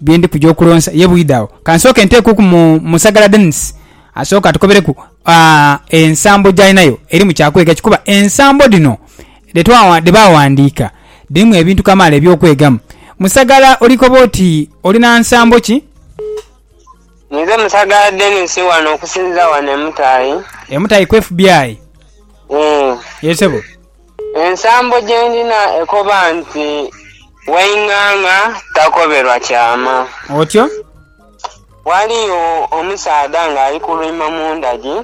bye ndi kuja okulonsa ye bwidha agho ka nsooke nteekuku mu Musagala Denis asooke atukobereku ensambo gy'alinayo eri mu kya kwega ki kuba ensambo dhino dhe baawandiika dhirimu ebintu kamaala eby'okwegamu. Musagala oli koba oti olina nsambo ki? Ninze Musagala Denis wano okusinziira wano e Mutaayi. E Mutaayi ku FBI? Ee. Yee sebo. Ensambo gye ndina ekoba nti, Waing'ang'a takoberwa kyama. Otyo. Ghaliyo omusaadha ng'ali kulwima mu ndagi,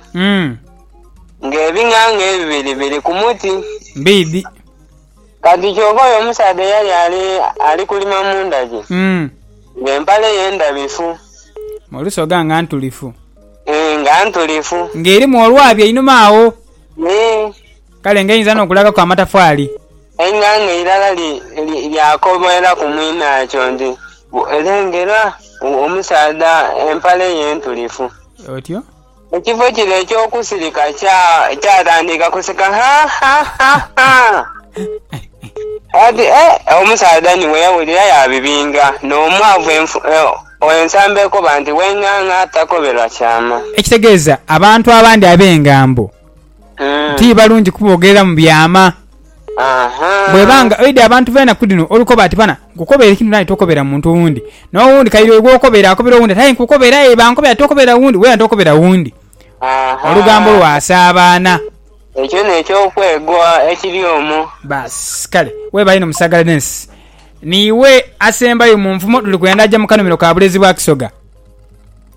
ng'ebing'ang'a ebibiri biri ku muti. Mbiidhi. Kati kyoka oyo omusaadha eyali ali kulima mu ndagi, ng'empale ye ndhabifu. Mu lusoga nga ntulifu. Nga ntulifu. Ng'erimu olwabi einhuma agho. Ee. Kale ng'einza n'okulagaku amatafaali. Enga ng'eirala lyakoboera ku mwinakyo nti, Lengera omusaadha empale ye ntulifu! Otyo. Ekifo kire eky'okusirika kyatandika kuseka ha ha ha ha! Ati, Eh! Omusaadha ni bwe yawulira yaabibinga n'omwavu ensamba ekoba nti, W'enganga takoberwa kyama. Ekitegeeza abantu abandi ab'engambo. ti balungi kubogerera mu byama. Bw'eba nga oidha abantu b'enaku dhino olukoba ati, Bana, nkukobera ekintu naawe tokobera muntu wundi. N'owundi kaire oyo gw'okobera akobera owundi ati, Aye nkukobera aye bankobera tokobera wundi, wena tokobera wundi. Olugambo lwasaabaana. Ekyo n'eky'okwegwa ekiri omwo. Baasi. Kale weebale inho Musaagala Denis. Niiwe asembayo mu nfumo dhuli kwenda aja mu kanhumiro ka bulezi bwa Kisoga.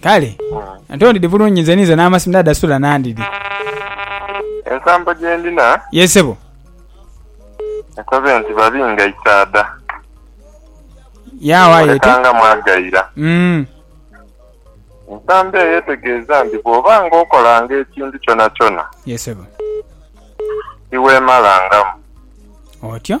Kale ate ondidi bulungi nze ninze n'amasimu dada sula nandidi. Ensambo gye ndina Ye sebo. ekoze nti babi nga isaadha Yaawo aye oti. oleka nga mwagaira. Mm. Ensambo eyo etegeeza nti bw'oba nga okolanga ekintu kyonakyona Ye sebo. tiweemalangamu. Otyo.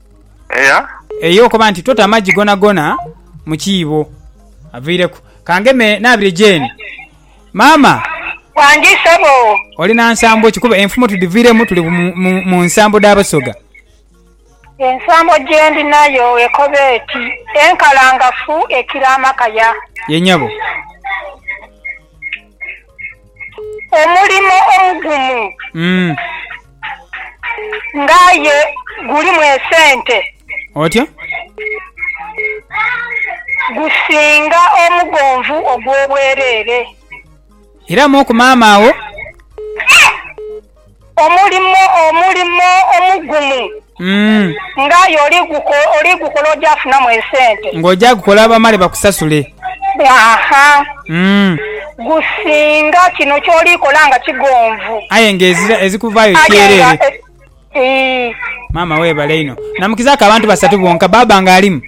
Eya. Eya okoba nti tota amagi gonagona mu kiibo. Aviireku. Kangeme naabire Jane. Maama. Wangi ssebo. Oli na nsambo ki? Kuba enfumo tudhiviiremu tuli mu nsambo dha Basoga. Ensambo gye ndinayo ekoba eti, Enkalangafu ekira amakaya. Ye nyabo. Omulimo omugumu. Nga aye gulimu esente. Otya? Gusinga omugonvu ogw'obwereere. Era mu ku maama wo. Omulimo, omulimo omugumu. Nga aye oli gukola ojafunamu esente. Nga oja gukola bamale bakusasule. Aha. Gusinga kino kyoli kola nga kigonvu. Aye nga ezikuvayo kyerere. Maama webale inho. Namukizaku abantu basatu bonka. Baaba nga alimu?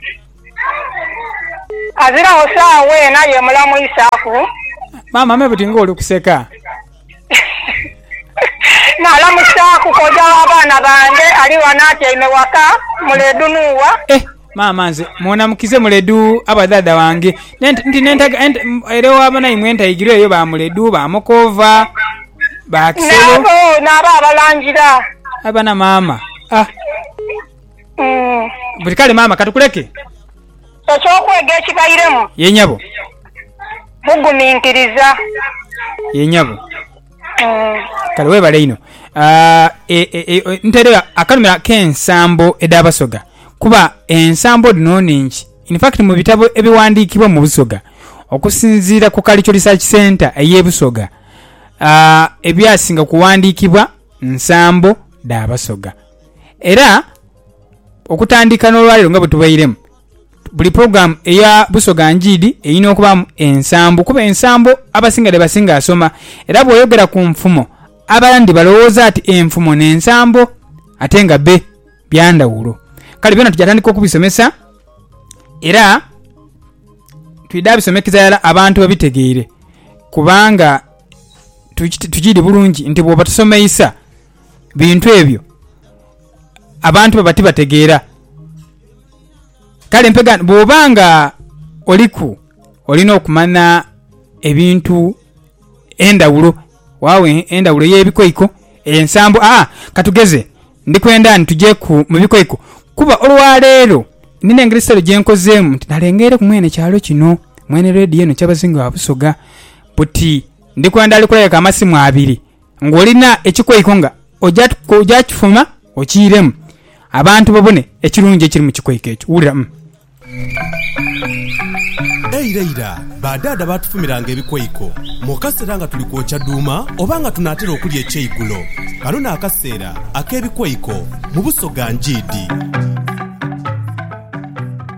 Aziragho saawa eno aye mulamu isaku. Maama me buti nga oli kuseka. Naalamusaaku kojja w'abaana bange ali ghano atyaime ghaka, Muledu Nuuwa. Eh, maama nze mwona mukize Muledu abadhaadha bange nti n'entaga ere wa banaimwe entaigiro eyo ba Muledu, ba Mukoova, ba Kisolo. N'abo, n'abo abalangira. Aye bana maama, ah. Buti kale maama katukuleke. Eky'okwega ekibairemu. Ye nyabo. Buguminkiriza. Ye nyabo. Kale webale inho. Ntairegho akanhumiro ak'ensambo edh'Abasoga kuba ensambo dhino nnhingi. In fact mu bitabo ebighandiikibwa mu Busoga okusinziira ku Kalicho Research Centre ey'e Busoga, ebyasinga kughandiikibwa nsambo dha Basoga. Era. Okutandika n'olwaleero nga bwetubairemu, buli program eya Busoga Njiidi erina okubaamu ensambo kuba ensambo abasinga dhebasinga soma era bwoyogera ku nfumo abandi balowooza ati enfumo n'ensambo ate nga be byandhawulo kale byona tuja tandika okubisomesa era twidha bisomekeza irala abantu babitegeire kubanga tukiidhi bulungi nti bwoba tosomeisa. bintu ebyo abantu baba tibategeera. Kale mpegano bwoba nga oliku olina okumanya ebintu endhawulo wawo endhawulo eyebikoiko, ensambo aa katugeze ndikwenda ni tujeku mubikoiko kuba olwaleero nina engeri sitale gyenkozeemu nti nalengeireku mwene kyalo kino, mwene leediyo eno Kyabazinga wa Busoga buti ndikwenda ali kulabeka amasimu abiri. Ng'olina ekikweiko nga oja kifuma okiiremu, abantu babone ekirungi ekiri mu kikweiko ekyo. Wulira. Eira ira, ba daada baatufumiranga ebikweiko mu kaseera nga tuli kwokya duuma oba nga tunaatera okulya ekyeigulo. Kano n'akaseera ak'ebikweiko mu Busoga Ngiidi.